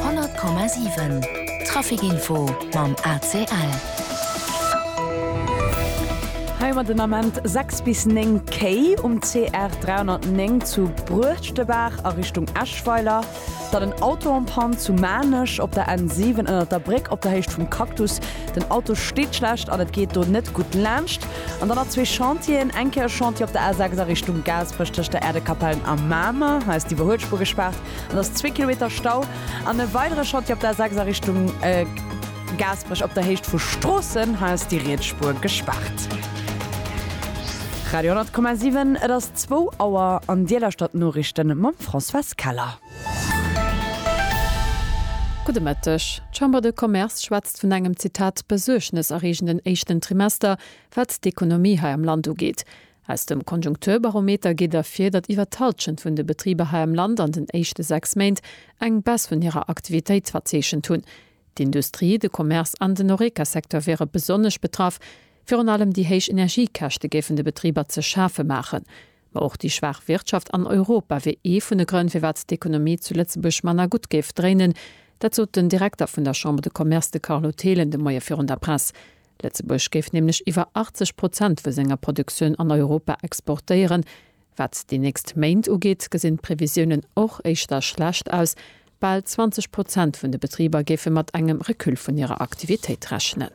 100,7 Trafic Info mam ACL. Hei mat den Ament 6 bis 9 Kéi um CR 309 zu Bruechtebaach a Richtung Eschweiler, dann en Auto en panne zu Maarnech op der N7 ënnert der Bréck op der Héicht vum Cactus, Den Auto steet schlecht an et geet do net gutt laanscht. An dann nach zwee Chantieren, eng Kéier e Chantier op der A6 a Richtung Gaasperech tëscht der Äerdekapell a Mamer, hei ass d'Iwwerhuelspuer gespaart an et ass zwee Kilometer Stau. An e weidere Chantier op der A6 a Richtung Gaasperech op der Héicht vu Stroossen, hei ass déi riets Spuer gespaart. Radio 10,7 Et ass zwou Auer an Dir lauschtert d'Noriichte mam Françoise Keller. Gudde Mëtteg. D'Chambre de Commerce schwätzt vun engem, Zitat, besuergneserreegenden éischten Trimester, wat d'Ekonomie hei am Land ugeet. Aus dem Konjunkturbarometer geet ervir, datt iwwer d'Hallschent vun de Betriber hei am Land an den éischte sechs Méint eng Baisse vun hirer Aktivitéit verzeechent hunn. D'Industrie, de Commerce an den Horeca-Secteur wiere besonnesch betraff. Virun allem déi héich Energiekäschte géifen de Betriber ze schafe maachen. Ma och déi schwaach Wirtschaft an Europa wier ee vun de Grënn, firwat d'Ekonomie zu Lëtzebuerg manner gutt géif dréinen. Dat sot den Direkter vun der Chambre de Commerce, de Carlo Thelen, de Moie virun der Press. Lëtzebuerg géif nämlech iwwer 80 Prozent vu senger Produktioun an Europa exportéieren. Wat déi nächst Méint ugeet, gesinn d'Previsiounen och éischter schlecht aus. Bal 20 Prozent vun de Betriber géife mat engem Recul vun hirer Aktivitéit rechnen.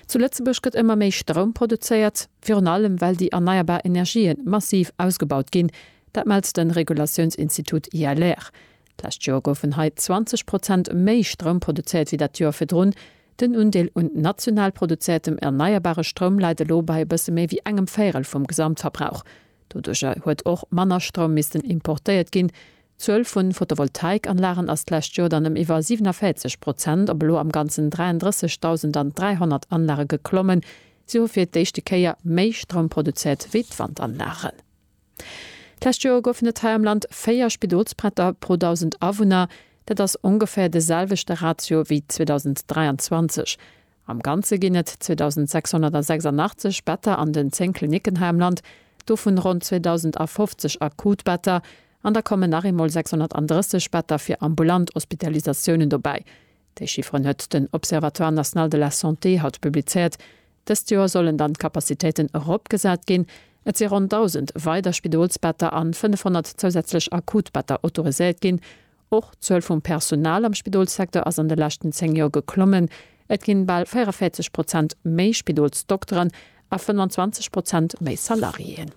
Zu Lëtzebuerg gëtt ëmmer méi Stroum produzéiert, virun allem well déi erneierbar Energië massiv ausgebaut ginn. Dat mellt de Regulatiounsinstitut ILR. D'lescht Joer goufen hei 20 Prozent méi Stroum produzéiert wéi dat Joer virdrun. Den Undeel un national produzéiertem erneierbare Stroum läit elo bei e bësse méi wéi engem Véirel vum Gesamtverbrauch. Doduercher huet och manner Stroum missten importéiert ginn, D'Zuel vu Photovoltaikanlagen ass d'lescht Joer dann ëm iwwer 47 Prozent op elo am Ganzen 33.000 an 300 Anlage geklommen. Si hu fir d'éischte Kéier méi Stroum produzéiert wéi d'Wandanlagen. D'lescht Joer goufen et hei am Land 4 Spidolsbretter pro 1.000 Awunner. Dat ass ongeféier de selwechte Ratio wéi 2023. Am Ganze ginn et 2.686 Better an den 10 Klinicken hei am Land, dovun ronn 2.050 akut Better, an da kommen nach eemol 630 Better fir ambulant Hospitalisatiounen dobäi. Déi Chifferen huet den Observatoire national de la santé haut publizéiert. Dëst Joer sollen dann d'Capacitéiten eropgesat ginn. Et si ronn 1.000 weider Spidolsbetter an 500 zousätzlech akut Better autoriséiert ginn. Och d'Zuel vum Personal am Spidolssecteur ass an de leschten 10 Joer geklommen. Et ginn bal 44 Prozent méi Spidolsdokteren a 25 Prozent méi Salariéen.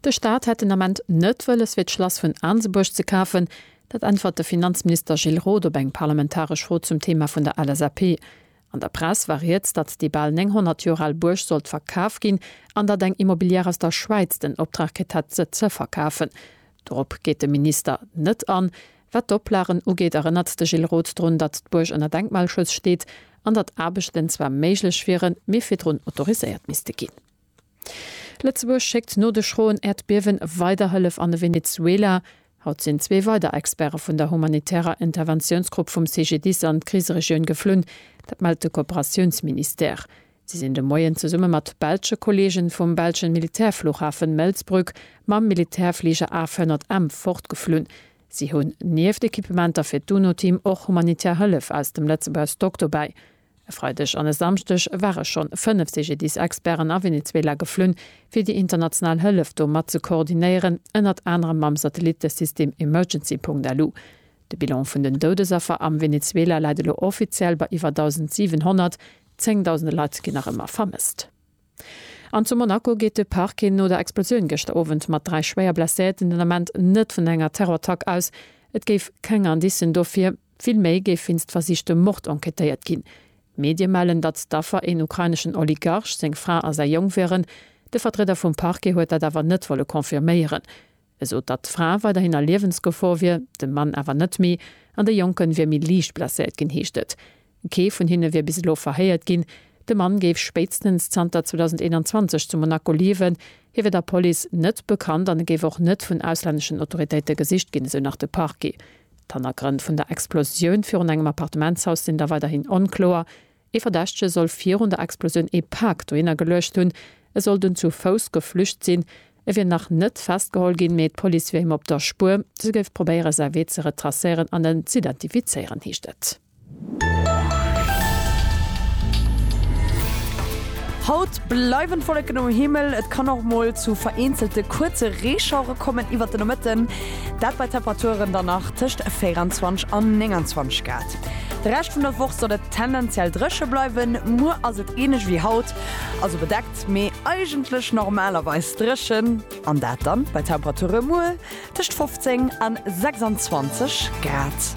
De Staat hätt den Ament net wëlles fir d'Schlass vun Aansebuerg ze kafen. Dat äntwert de Finanzminister Gilles Roth op eng parlamentaresch Fro zum Thema vun der LSAP. An der Press war rieds, datt déi bal 900 Joer al Buerg sollt verkaf ginn an datt eng Immobilière aus der Schwäiz den Optrag kritt hätt se ze verkafen. Dorop geet de Minister net an. Wat d'Oplagen ugeet, erënnert de Gilles Roth drun, datt d'Buerg ënner Denkmalschutz steet an datt Aarbechten zwar méiglech wieren, mee virdrun autoriséiert misste ginn. Lëtzebuerg schéckt no de schroen Äerdbiewen weider Hëllef an de Venezuela. Haut sinn zwee weider Experte vun der humanitärer Interventiounsgrupp vum CGDIS an d'Kriseregioun geflunn. Dat mellt de Kooperatiounsministère. Si sinn de Moien zesumme mat belsche Kolleegen vum belschen Militärflughafen Melsbrück mam Militärfliger AF-100M fortgeflunn. Si hunn nieft Equipementer fir d'UNO-Team och humanitär Hëllef aus dem Lëtzebuerg Stock dobäi. E Freideg an e Samschdeg ware schonn fënnef CGDIS-Experten a Venezuela geflunn, fir déi international Hëllef do mat ze koordinéieren, ënnert anerem mam Satellittesystem Emergency.lu. De Bilan vun den Doudesaffer am Venezuela läit elo offiziell bei iwwer 1.700. Zéngdausende Leit ginn nach ëmmer vermësst. An zu Monaco geet de Parquet no der Explosioun gëschter Owend mat dräi schwéier Blesséierten den Ament net vun enger Terrorattack aus. Et géif keng Indicen dofir, vill méi géif wéinst versichtem Mord enquêtéiert ginn. Medie mellen, datt d'Affer een ukraineschen Oligarch, seng Fra a säi Jong wieren. De Vertrieder vum Parquet huet dat awer net wolle confirméieren. esot datt d'Fra weiderhin a Liewensgefor wier, de Mann awer net méi, an de Jonken wier méi liicht blesséiert ginn, heescht et. Kee vun hinne wier bis elo verhéiert ginn. De Mann géif spéitstens zanter 2021 zu Monaco liewen. Hie wier der Police net bekannt an e géif och net vun auslänneschen Autoritéite gesicht ginn, esou nach de Parquet. D'Hannergrënn vun der Explosioun virun engem Appartementshaus sinn da weiderhin onkloer. Ee Verdächtege soll virun der Explosioun ee Pak dohinner geluecht hunn. E soll dunn zu Fouss geflücht sinn. E wier nach net festgeholl ginn, mee d'Police wier him op der Spuer. Se géif probéiere säi Wee ze retracéieren an en z'identifizéieren, heescht et. Haut bleiwen d'Wolleken um Himmel, et kann och mol zu vereenzelte kuerze Reeschauere kommen iwwert de Nomëtten, dat bei Temperaturen dann nach tëscht 24 an 29 Grad. De Rescht vun der Woch soll et tendenziell dréche bleiwen. Muer ass et ähnlech wéi haut, also bedeckt, mee eigentlech normalerweis dréchen, an dat dann bei Temperature muer tëscht 15 a 26 Grad.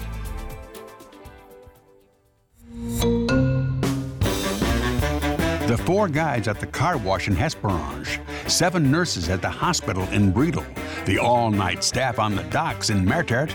The four guides at the car wash in Hesperange, seven nurses at the hospital in Bredal, the all-night staff on the docks in Mertert,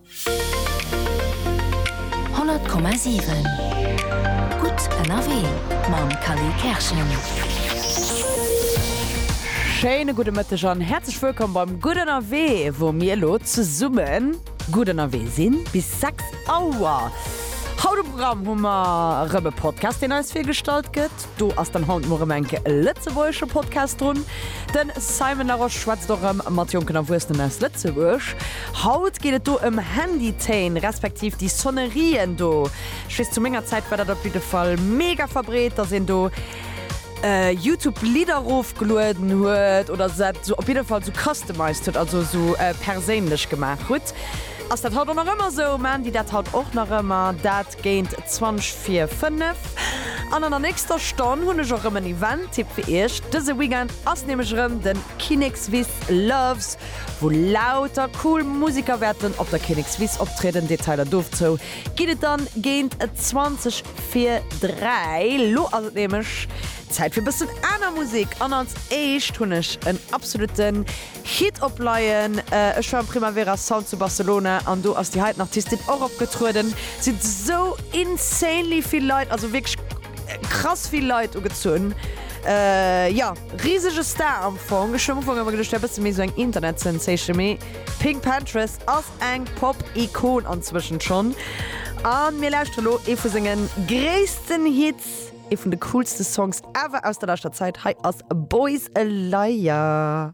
Honnert Komma siwen Gutt ënnerwee mam Kally Kerschen. Schéine gudde Mëtteg an häerzlech wëllkomm beim Gutt ënnerwee, wou mir elo zesumme gutt ënnerwee sinn bis 6 Auer. Haut um Programm hu mer erëm e Podcast, deen eis virgestallt gëtt. Do ass dann haut muer rem enke e lëtzebuergesche Podcast drun. Den Simon Larosche schwätzt och rem mat jonken Erwuessenen aus Lëtzebuerg. Haut geet et do em Handytéin, respektiv déi Sonnerien do. Ech weess, zu menger Zäit war dat op jidde Fall mega verbreet, dass een do Youtube Lidder rofgelueden huet oder se op jidde Fall sou customized huet, also sou perséinlech gemaach hutt. Ass dat haut och nach ëmmer sou? Maan déi dat haut och nach ëmmer? Dat. Minutt géint 20 vir 5. An an der nächster Stonn hunn ech och rëm en Event-Tipp fir iech. Dëse Weekend ass nämlech rëm den Kinnekswiss Loves, wou lauter cool Musiker wäerten op der Kinnekswiss optrieden. Detailer dovzou ginn et dann géint 20 vir 3. Lo ass et nämlech Zäit fir bëssen aner Musek an als éischt hunn ech en absolutten. Hit op Laien. Ech war um Primavera Sound zu Barcelona an do ass déi heiten Artistin och opgetrueden. Si hunn esou insanely vill Leit, also wierklech krass vill Leit ugezunn. Jo, risege Star am Fong. Ech hu am Ufank ëmmer geduecht, et wär e bësse méi esou eng Internetsensation, mee d'Pinkpantheress ass eng Pop-Ikon anzwëschent schonn. A mir lauschtere lo ee vu senge gréissten Hits, ee vun de coolste Songs ever aus der leschter Zäit. Hei ass Boys a Liar.